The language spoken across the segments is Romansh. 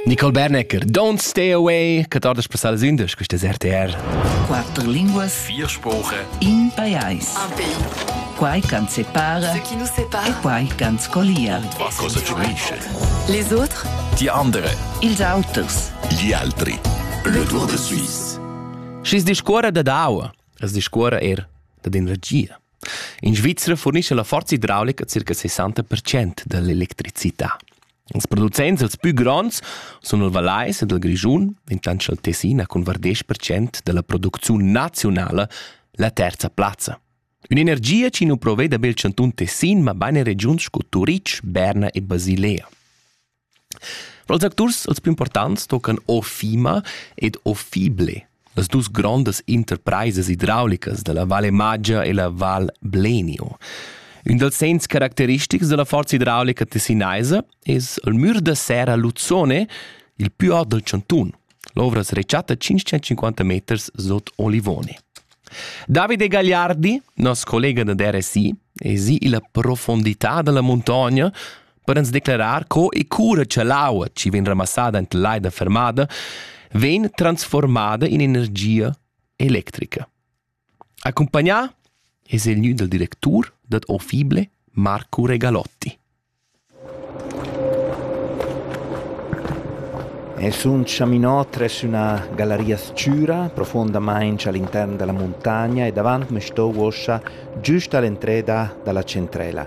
Nicole Bernecker, Don't Stay Away, Catardas Passadas Indas, questa è RTR. Quatter linguas, vier Sprachen, in pajais. Un pays. Quai can separa, ce qui nous sépare, e quai can scolia. Va cosa gioisce? Les autres, die andere, ils auters, gli altri. Le Tour de Suisse. Schis discuora dad aua, es discuora er dad in regia. In Svizra furnischa la forza idraulica circa 60 percent dall'electricità. Ils producents els pü gronds sun il Vallais ed il Grischun, intant cha'l Tessin ha cun var 10% dalla producziun naziunala la terza plazza. Ün'energia chi nu proveda be il chantun Tessin, ma bain in regiuns sco Turitg, Berna e Basilea. Pels acturs els più importants toccan O Fima ed O Fible, las dus grondas interpraisas idraulicas da la Valle Maggia e la Val Blenio. Ün dals segns caracteristics da la forza idraulica tessinaisa es il mür da serra Luzzone, il più aut dal chantun. L'ovra es rechatta 550 meters sot Olivone. Davide Gagliardi, nos collega da RSI, es i illa profondità da la muntogna Per ans declarar co e cura cha l'aua chi vegn ramassada ent l'aida fermada vegn transformada in energia electrica. Accompagnà es il gnü dal directur dad Ofible, Marco Regalotti. Es un chaminot tres üna galleria s-chüra, profondamaing all'intern della montagna e davant me sto uossa giüst all'entreda dalla centrela.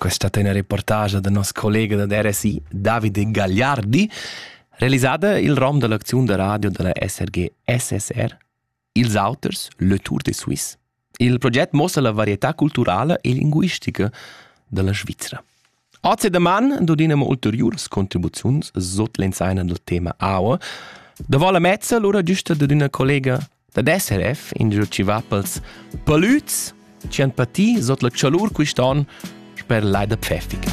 questa tenera reportage da nos collega da RSI Davide Gagliardi, realisada il rom dell'acziun da radio della SRG SSR Ils Auters, Le Tour de Suisse. Il progetto mostra la varietà culturale e linguistica della Svizzera. Oggi doman dodinamo ulteriores contribuziuns sot l'ensaina del tema aua. Da vola mezza lura giusta dad una collega dad SRF ingio chi va pels palüds chi han patì sot la chalur quist'on sper l'ai da Pfäffica.